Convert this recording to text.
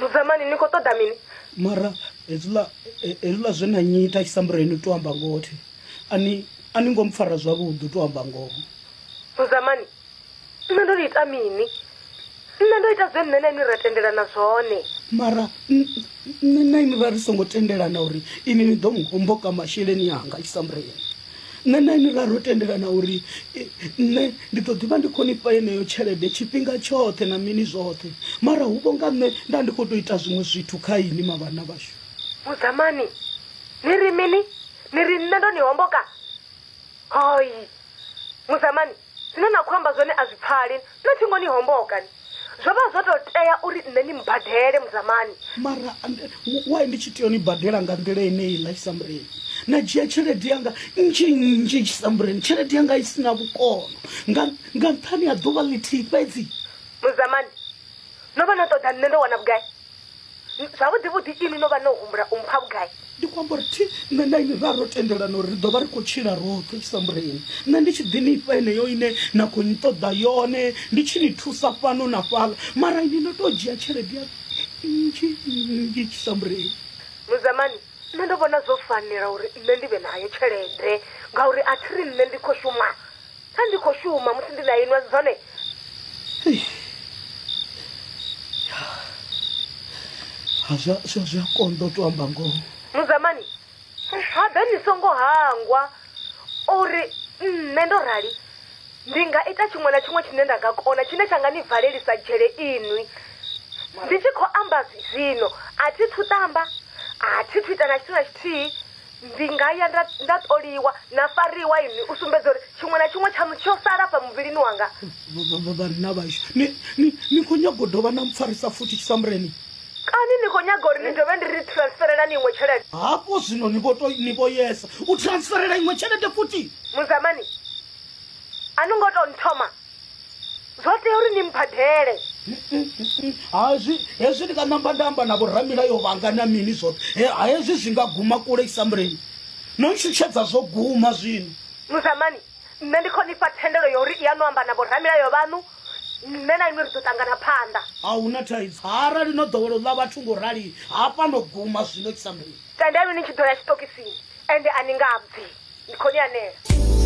Mudzamani ni khou ṱoḓa mini? mara hezwiḽa he- hezwiḽa zwe na nnyita a tshi sa mureni to amba ngoho thi a ni a ni ngo mpfara zwavhuḓi to amba ngoho Mudzamani, nṋe ndo ni ita mini? Nṋe ndo ita zwe nṋe na inwi ra tendelana zwone. mara n- nṋe na inwi ra ri songo tendelana uri inwi ni ḓo mu homboka masheleni anga a tshi sa mureni nṋe na ini ra ro tendelana uri nṋe ndi ḓo ḓivha ndi khonifha yeneyo tshelede tshifhinga tshoṱhe na mini zwoṱhe mara hu vho nga nṋe nda ndi khou tou ita zwiṅwe zwithu kha ini mavhana vhashu mudzamani ni ri mini ni ri nṋe ndo ni homboka hoi mudzamani Zwine na khou amba zwone a zwi pfali, na thingo ni homboka ni. Zwo vha zwo tou tea uri nṋe ni mmbadele, Mudzamani. Mara ndi, why ndi tshi tea u ni badela nga nḓila yeneiḽa, Tshisambureni? Na dzhia tshelede yanga nnzhi nnzhi, Tshisambureni, tshelede yanga i si na vhukono, nga, nga nṱhani ha ḓuvha ḽithihi fhedzi. Mudzamani, no vha no ṱoḓa nṋe ndo wana vhugai? zwavhuḓi vhuḓi ini no vha no humbula u mpha vhugai ndi khou amba uri thi nṋe na ini ra ro tendelana uri ri ḓo vha ri khou tshila roṱhe tshi sambure ini nṋe ndi tshi ḓi ni fha eneyo ine na khou ni ṱoḓa yone ndi tshi ni thusa fhano na fhala mara ini no tou dzhia tshelede ya nnzhi nnzhi tshi sambure ini muzamani nṋe ndo vhona zwo fanela uri nṋe ndi vhe nayo tshelede ngauri a thi ri nṋe ndi khou shuma Pfa ndi khou shuma musi ndi na inwi, a si zwone? Ha, zwa zwa zwi a konḓa u tou amba ngoho Mudzamani, habe ni songo hangwa uri nṋe ndo rali ndi nga ita tshiṅwe na tshiṅwe tshine nda nga kona tshine tsha nga ni valelisa dzhele inwi. Ndi tshi khou amba zwino, a thi thu ṱamba, a thi thu ita na tshithu na tshithihi. ndi nga ya nda nda ṱoliwa na fariwa ini u sumbedza uri tshiṅwe na tshiṅwe tshaṋu tsho sala fha muvhilini wanga vhanna vhashu ni ni- ni khou nyago dovha na mpfarisa futhi tshisamureni kani ni khou nyaga uri ni dovhe ndi ri transferela ni iṅwe tshelede hafho zwino ni vho to- ni vho yesa u transferela iṅwe tshelede futhi muzamani a ni ngo tou nthoma Zwo tea uri ni mmbadele. Hazwi, hezwi ndi nga namba nda amba na vhoramilayo vhanga na mini zwoṱhe. He, hezwi zwi nga guma kule isamuleni. No ntshutshedza zwo guma zwino. Muzamani, nṋe ndi khou ni fha thendelo ya uri ya no amba na vhoramilayo vhaṋu, nṋe na inwi ri ḓo ṱangana phanḓa. A hu na thaidzo, arali no ḓowela u ḽa vhathu nga u rali, hafha no guma zwino isamuleni. Tendelwi ni tshi ḓo ya tshiṱokisini, ende a ni nga bvi. Ndi khou ni anela.